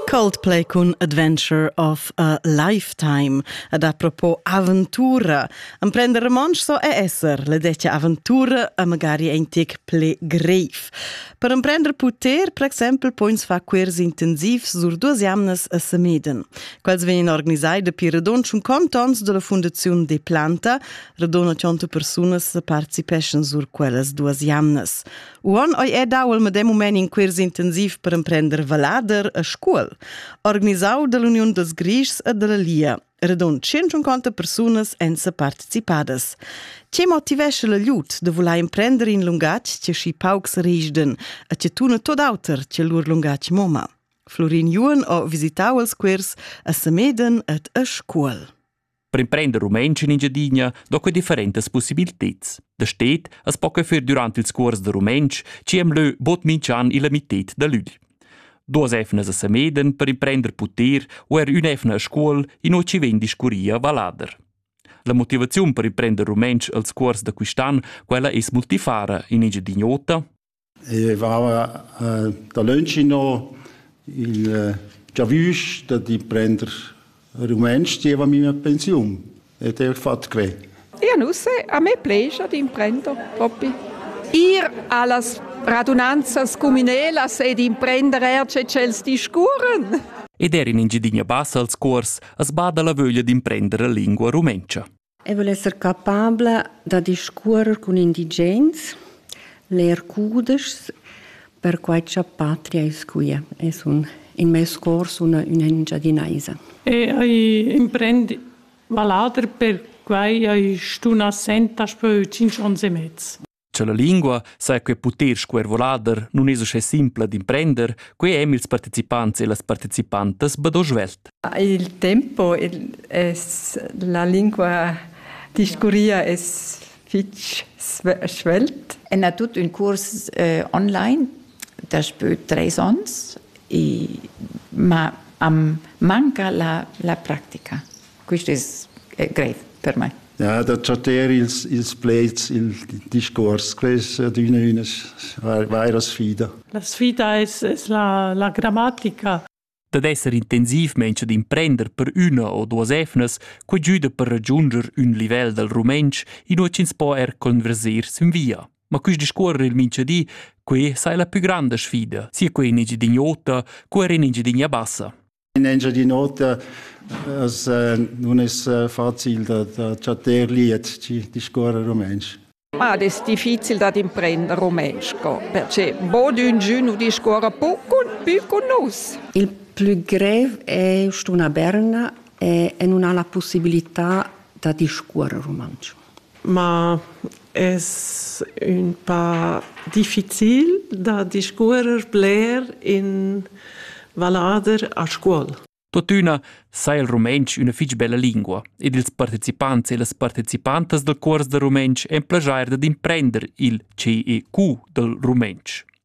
Coldplay cun Adventure of a Lifetime ad apropos aventura. Emprender romontsch so è esser le dettia aventura e magari ein tic ple greif. Per emprender puter, per exempel, poins fa quers intensivs sur duas jamnas a Semeden. Quels vegnan organisai dapi radon un contons della Fundazione de Planta, radona tionto persunas participeschan sur quellas duas jamnas. Uon ei è dau il medem mument in quirs intensiv per emprender valader a scuol, organisau dall'Uniun dels Grischs e dalla Lia. Redon 150 persunas èn se participadas. Che motivesce la lut de voler emprender in lungatg che schi paucs risden e che tuna tot auter che lur lungatg moma? Florin Juon ho visitau els quirs a Semeden et a Scuol. Per imprender rumantsch in Engiadina do que differentas possibilteds. Da stet as po que fer durant ils cuors da rumantsch, ci am lö bod minch'an illa mited da lügl. Duos efnas a Sameden per imprender puter u er ün'efna a scuol ino ci vegn discurria valader. La motivaziun per imprender rumantsch als cuors da quist'an, quella es multifara in Engiadin'Ota, I vaiva dalönch inno il giavüsch da di prender rumentsch zieva mia pensiun ed eir fat que. Eau nu se, a me plescha d'imprender propi. Ir a las radunanzas cumünelas ed imprender eir che tschels discurren. Ed eir in Ingiedina bassa als cuors as bada la vöglia d'imprender la lingua rumentscha. Eu voul esser capabla da discuorrer cun indigens, ler cudeschs, perquai cha patria es quia e sun in meis cor sun üna Engiadinaisa. E ai imprend vallader, perquai ai stun assent daspö tschinch ons e mez. Cha la lingua saja que puter scuervolader nun es uschè simpla d'imprender, quai hem ils partecipants e las partecipantas bado svelt. Il tempo es la lingua discurria es fich svelt. En ha tut ün curs eh, online daspö tres ons e ma am manca la, la practica. Quist es greiv per mai. Ja, da chatter ils, ils pleds, il discuors, quest è adüna üna vaira sfida. La sfida es, es la, la grammatica. Dad esser intensivmaing ad imprender per üna o duos efnas, quai güda per ragiunder ün livel dal rumentsch inua ch'ins po er converser sin via. Ma quist discuorrer il minchadi, quai sai la pü granda sfida, sia quai in Engiadini'ota, co er in Engiadinia bassa. In Engiadin'Ota as nun es facil da da chattar liet chi discuorra rumantsch. Ma ed es difficil dad imprender rumantsch co, perche bod üngün nu discuorra pü cun pü cun nus. Il plü grev è stuna berna e, e nun ha la pussibilità da discuorre rumantsch. Ma es ün pa difficil da discuorrer bler in vallader a scuol. Tuttina sai il rumentsch üna fich bella lingua ed ils partecipants e las partecipantas dal cuors da rumentsch en plajair dad imprender il CEQ dal rumentsch.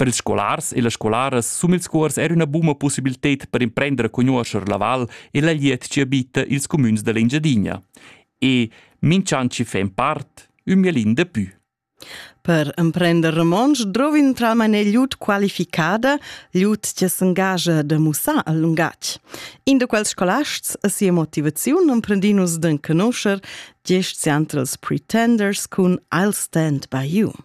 Per ils scolars e las scolaras sum ils cuors era üna buna possibilted per imprender a conoscer la val e la liet chi abita ils cumüns dell'Engiadina. E minch'an chi fa in part, ün mielin de pü. Per emprender romontsch drovin tralmain gliut qualificada, gliut che s'engagia da mussar al lungatg. In de quels scolasts a sia motivaziun emprendinus d'en conoscer diesch centrals pretenders cun I'll Stand by You.